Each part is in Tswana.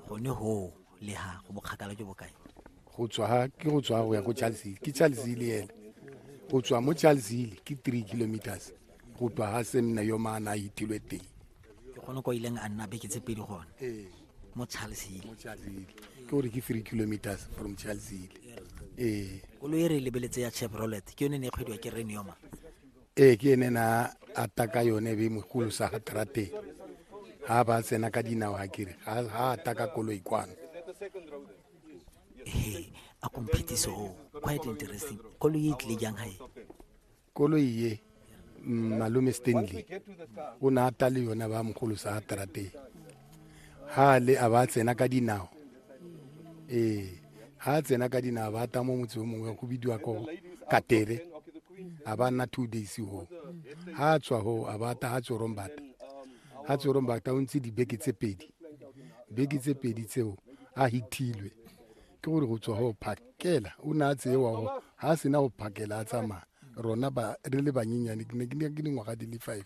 gone go le ha go bokgakala jo bokae go tswa ha ke go tswa go ya go charlesile ke charlesile ene go tswa mo charlesile ke three kilometers go tswa ha semna yo maana a itilwe teng ke gone ko ileng a nna beke tse pedi gone ee mo charlesile mo charlesile ke gore ke three kilometers from charlesile ee koloi e re e lebeletse ya chevrolet ke yone ne e kgwediwa ke renioma ee ke ene na ata ka yone be mogolo sa ga trateng ga ba tsena ka dinao ga kere ga ata ka koloi kwano ee a komphetiso quite interesting koloi e tlile jang gae koloi ye mm, malome stanley o ne ata le yone ba mogolo sa ga trateng ha le a ba tsena ka dinao ee ha tsena ka dinao ba ta mo motse o mongwe go bidiwa ko katere a ba nna two days ho ha tswa ho a ba ta ha tsorombata ha tsorombata o ntse dibeke tse pedi beke tse pedi tseo a hithilwe ke gore go tswa go phakela o ne a tseewa go ga a sena go phakela a tsamaya rona re le banyenyane ke ne ke dingwaga di le five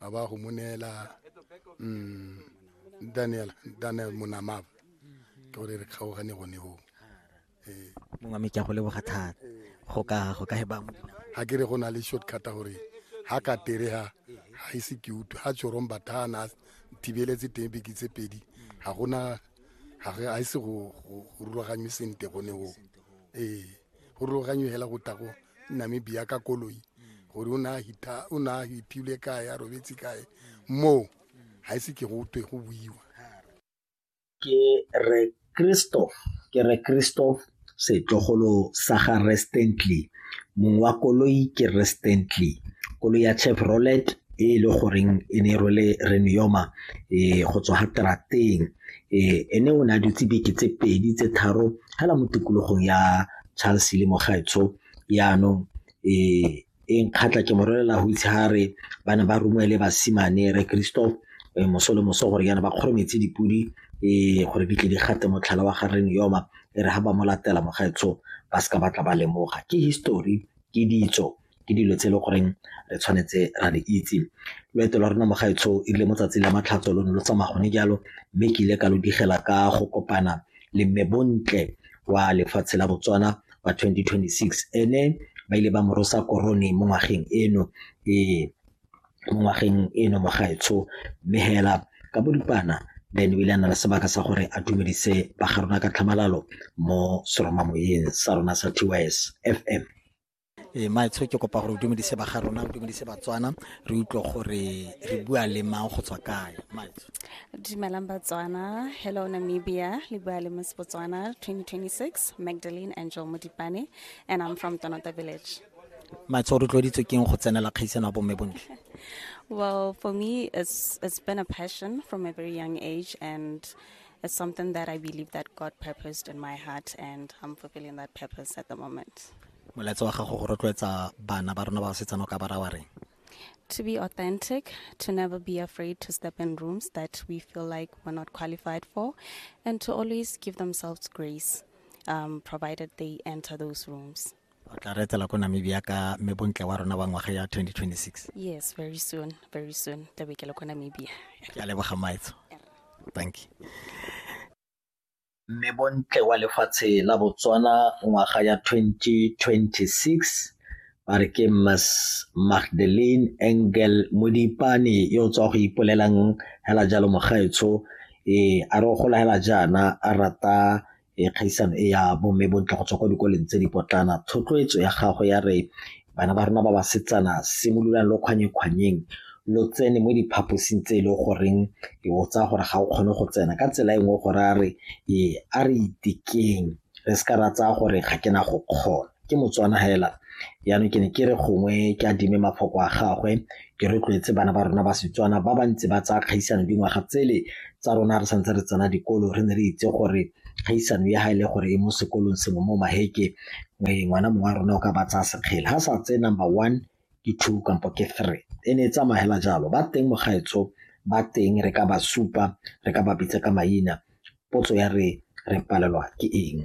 a ba go mo neela mm, daniel daniel monamaba ke gore re kgaogane gone go ee mongwe me ke a go leboga thata go ka go ka he ba mo dinao ga ke re go na le shortcut gore ga ka terega ga ise ke utlwe ga tsorong bathana thibeletse teng beke tse pedi ga gona ga ise go rulaganywe sente gone go ee go ruloganye hela go tla go namibia ka koloi gore o ne a hiphile kae a robetse kae moo ga ise ke go twe go buiwa ke re kristo ke re kristo setlogolo sa ga restently mong wa koloi ke restently koloi ya chevrolet e e le goreng e ne e rwele renuyoma e go tswa ga trateng Ee, ene o ne a dutse beke tse pedi tse tharo fela mo tikologong ya Charles le Mogaetsho yaanong ee e nkgatlha ke mo rolela go itse ga re ba ne ba romele basimane re Christoph eh, moso le moso gore yana ba kgorometse dipodi ee gore di tle di gate motlhala wa gareng yoma e re ga ba mo latela Mogaetsho ba seka batla ba lemoga ke history ke ditso ke dilo tse e le goreng re tshwanetse ra di itse loeto lwa rona mogaetsho e rile mo tsatsi la matlhatso lo ne lo tsamaya gone jalo mme ke ile ka lo digela ka go kopana le mme bontle wa lefatshe la botswana wa 2026 ene ba ile ba morosa korone mo ngwageng eno ee mo ngwageng eno mogaetsho mme hela ka bodipana then o ile a na le sebaka sa gore a dumedise ba ga rona ka tlhamalalo mo seromamoyeng sa rona sa tys fm e eh, maetsho ke kopa gore o dumedise ba ga rona o dumedise batswana re utlwe gore re bua le mang go tswa kae maetsho dumelang batswana hello namibia le bua le miss botswana 2026 magdalene angel modipane and i'm from tonota village maetsho o rotloeditswe keng go tsenela kgaisano ya bomme bontle well for me it's, it's been a passion from a very young age and it's something that i believe that god purposed in my heart and i'm fulfilling that purpose at the moment molaetsa wa gago go rotloetsa bana ba rona ba basetsana o ka ba rawa reng to be authentic, to never be afraid to step in rooms that we feel like we're not qualified for, and to always give themselves grace, um, provided they enter those rooms. o tla re etela ko namibia ka mme bontle wa rona wa ngwaga ya 2026 Yes, very soon, very soon. Tla be ke le kwa Namibia. ke a leboga maetso thank you Mme Bontle wa lefatshe la Botswana ngwaga ya 2026 ba re ke Ms Magdalene Engel Modipane yo o tswa go ipolelang hela jalo mogaetsho e a re o gola hela jaana a rata e kgaisano e ya bomme bontle go tswa kwa dikoleng tse di potlana thotloetso ya gago ya re Bana ba rona ba basetsana simololang lo kgwanyekgwanyeng lo tsene mo diphaposing tse e le goreng e o tsaya gore ga o kgone go tsena ka tsela e nngwe gore a re ee a re itekeng re se ka ra tsaya gore ga ke na go kgona ke motswana hela jaanong ke ne ke re gongwe ke a dime mafoko a gagwe ke rotloetse bana ba rona ba Setswana ba ba ntse ba tsaya kgaisano dingwaga tsele tsa rona re santse re tsena dikolo re ne re itse gore kgaisano ya ga e le gore e mo sekolong sengwe mo maheke ngwana mongwe wa rona o ka ba tsaya sekgele ga sa tse number one ke two kampo ke three e ne e tsamagela jalo ba teng mogaetso ba teng re ka ba supa re ka ba bitsa ka maina potso ya re re palelwa ke eng